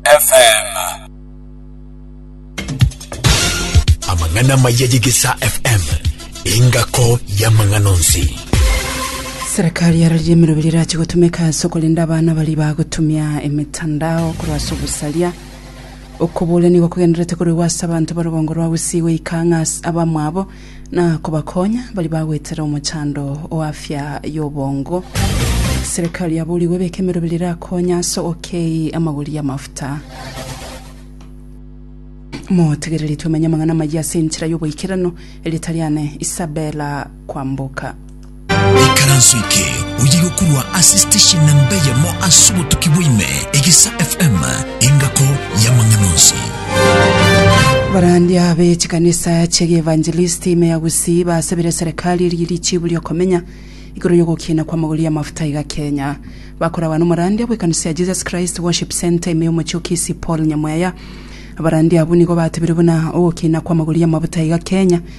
FM. Amang'ana amaya y'Egesaa FM, engako y'amang'ana onsi. Serikali ya rarire emeroberi erache gotumeka ase okorenda abana baria bagotumia emetandao korwa ase ogosaria okoborania gokogendererete koregwa ase abanto ba rugongo rwa Gusii goika ng'a ase abamwabo Na kobakonya baria bagwetera omochando o afya y'obongo. Serikali yaboorigwe ebeke emerobera erakonye ase ogokei amagori y'amafuta. Motegereri twemenye amang'ana amayia ase enchera y'oboikeranu, erieta riane Isabella Kwamboka. Ikaranso eke oye gokorwa ase station namba eyemo ase obotuki bwaime, Egesa FM, engako y'amang'ana onsi. Abarandia be chikanisa chie gievangelisti ime ya Gusii basabire serikali eria richibu ria okomenya igoro y'ogokiina kw'amagori y'amafuta iga Kenya. Bakoragwa n'omorandia bw'ekanisa ya Jesus Christ Worship Centre ime y'omochie o Kisii Paul Nyamweya. Abarandia abwo nigo batebire buna ogokiina kw'amagori y'amafuta iga Kenya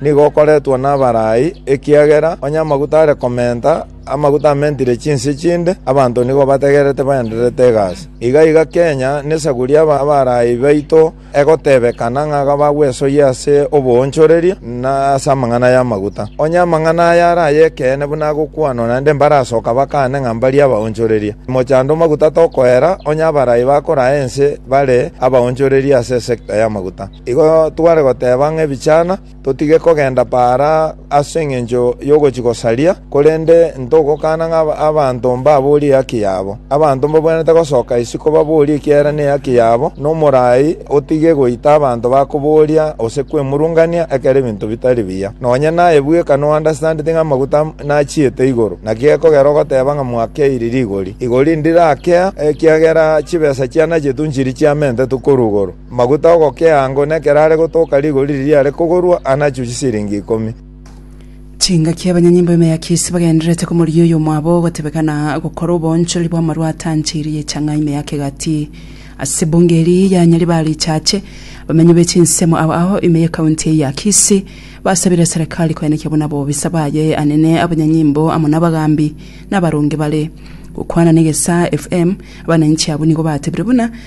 Nigo okoretwa nabarai, ekiagera onye amaguta are komenta, amaguta amentire chinsie chinde, abanto nigo bategererete baendererete egasi. Iga iga Kenya nesaguri y'abarai baito egotebekana ng'a iga bagwesoyia ase oboonchoreria, na ase amang'ana y'amaguta. Onye amang'ana aya are ay'ekeene buna agokwanwa, naende mbarasoka bakane ng'a mbarie abaonchoreria. Mochando o maguta tokoera, onye abarai bakoraa ense bare abaonchoreria ase esekta y'amaguta. Igo tware goteba ng'a ebichana totige kogenda paara ase engencho y'ogochia gosaria, korende ntogokana ng'a abanto mbaborie ehaki yabo. Abanto mbabwenerete gosoka isiko baborie ekiagera nehaki yabo, na omorai otige goita abanto bakoboria gose kwemurungania ekero ebinto bitari biya. Nonya naye bweka noandastandeti ng'a amaguta nachiete igoro, naki gekogera ogoteba ng'a mwakeire rigori. Igori ndirakea, ekiagera chibesa chianachetu nchiri chiamentetwe korwa igoro. amaguta ’ogokeango, na ekero are gotoka rigori riria riare kogorwa anachwe chisiringi ikomi. Chingaki abanyanyimbo ime ya Kisi bagendererete komoria oyo omwabo ogotebeka na gokora oboonchoreri bw'amarwa atancheirie echang'aa ime ya kegati. Ase bunge eri ya Nyaribari Ichache, abamenyi be chinsemo aba ao ime y'ekaunti eye ya Kisi basabire eserekari koenekia buna abobisa baye anene abanyanyimbo amo nabagambi nabaronge bare. Gokwana na Egesaa FM, abananchi abwo nigo batebire buna,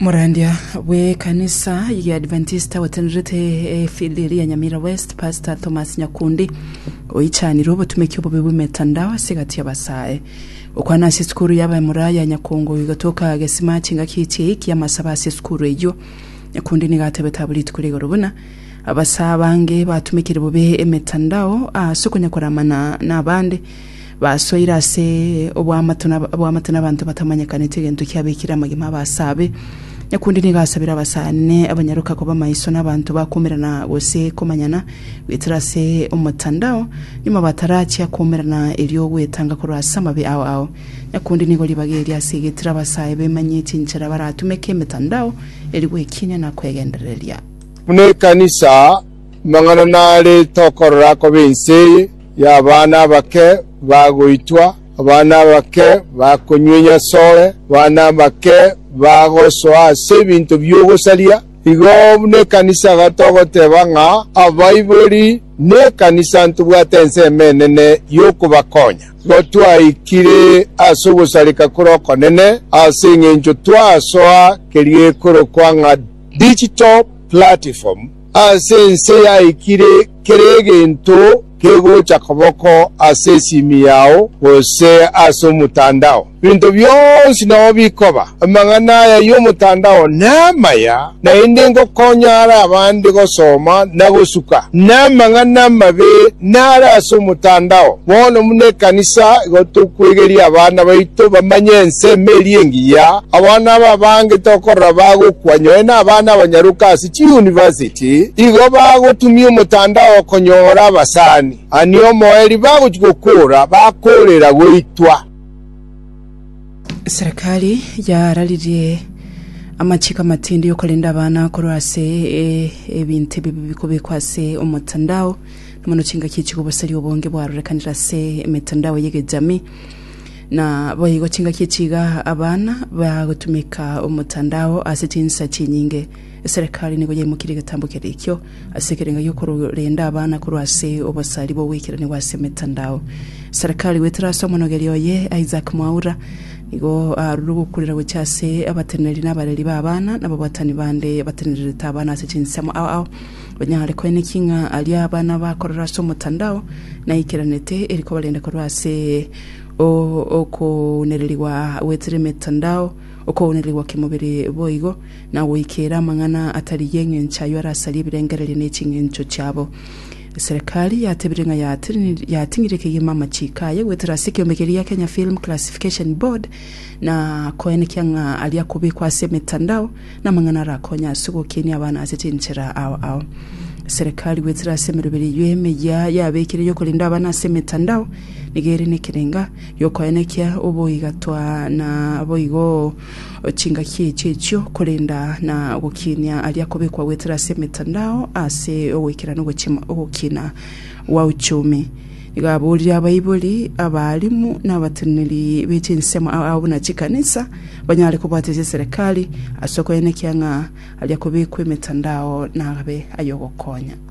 Morandia bw'ekanisa ya Adventista gwetenerete efili ria Nyamira West, Pastor Thomas Nyakundi oichanire obotumeki obobe bw'emetandao ase egati y'abasae. Gokwana ase esukuru y'abamura ya Nyakungu igatoka gesima chingaki echi eiki amasabo ase esukuru eyio. Nyakundi nigo atebete abwo rituko ria igoro buna abasae abange batumekire bobe emetandao ase okonya koramana nabande Basoire ase oboamate na aboamate n'abanto batamanyekaneti egento kiabekire amagima abasabe. Nyakundi nigo asabire abasani abanyaroka koba maiso n'abanto bakomerana gose komanyana goetera ase omotandao nyuma batarachia komerana erio ogwetanga korwa ase amabe ao ao. Nyakundi nigo ribaga eria ase egetire abasae bemanyie chinchera baratumeke emetandao eri gwekiinia na kwegendereria. Buna ekanisa, amang'ana nare tokorora akobe ense eye, y'abana abake bagoitwa, abana abake bakonyunyia asore, abana abake bagosoa ase ebinto bi'ogosaria. Igo buna ekanisa iga togoteba ng'a abaibori nekanisa ntobwate ensemo enene y'okobakonya. Igo twaikire ase ogosareka kore okonene ase engencho twasoa keria ekorokwa ng'a digital platform, Ase ense yaikire kera egento kegocha koboko ase esimi yao gose ase omotandao. Ebinto bionsi nao bikoba. Amang'ana aya y'omotandao namaya, naende ngokonya are abande gosoma na gosuka. Namang'ana amabe nare ase omotandao. Bono buna ekanisa igo tokwegeria abana baito bamanye ensemo eria engiya. Abana aba abange tokorora bagokwa nyoe nabana abanyaroka ase chiuniversity igo bagotumia omotandao konyora abasani ani omoeri bagochia gokora bakorera goitwa. Serikali yararirie amachiko amatindi y'okorenda abana korwa ase ebinto ebibe bikobekwa ase omotandao, na mono chingaki chigoboseria obonge bwarorekanire ase emetandao y'egechami. Na boigo chingaki echiiga abana bagotumeka omotandao ase chinsa chinyinge. Eserekari nigo yaimokirie egetambo keria ekio ase ekerengo gi'okorenda abana korwa ase obosari bw'ogweikerania gw'ase emetandao. Serekari goetera ase omonogeri oye Isaac Mwaura nigo aarure ogokurera gochia ase abateneneri na abareri ba abana na ababwatani bande batenererete abana ase chinsemo ao ao banyare koeneki ng'a aria abana bakorera ase omotandao naikeranete eri kobarenda korwa ase okounererigwa goetera emetandao, okounererigwa kemobere boigo. na goikeera amang'ana atari y'engencho ayio arasarie ebirengererio ne chingencho chiabo. Eserekari yatebirie ng'a yatini- yating'ire kegima amachiiko aye goetera ase ekeombe keria gia Kenya Film Classification Board na koenekia ng'a aria akobekwa ase emetandao na amang'ana arakonye ase ogokenia abana ase chinchera ao ao. Eserekari goetera ase emeroberi eyio emeyia yabekire y'okorenda abana ase emetandao nigo ere nekerenga giokoenekia oboigatwa na boigo chingaki echi echio, korenda na ogokinia aria kobekwa goetera ase emetandao ase ogoikera na ogochima ogokina gwa uchumi. Nigo aborire abaibori, abaalimu, na abateneneri be chinsemo ao ao buna chikanisa banyare kobwatesia eserekari ase okoenekia ng'a aria kobekwa emetandao nabe ay'ogokonya.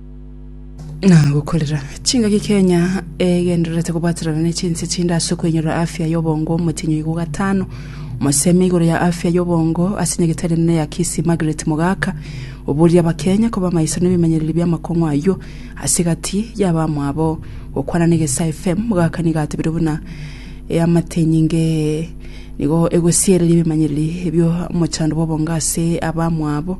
nagokorera chingaki kenya egendererete kobwaterana ne chinse chinde ase okoinyorora afya y'obongo omotenyo igo gatano omosemi igoro ya afya y'obongo ase nyagetari enene ya kisii margaret mogaka oboria abakenya koba maiso na ebimenyereri bi'amakong'u ayio ase egati y'abamwabo gokwana na egesaa fm mogaka nigo atebire buna eamatenyinge nigo egosiereria ebimenyereri ebio omochando bw'obongo ase abamwabo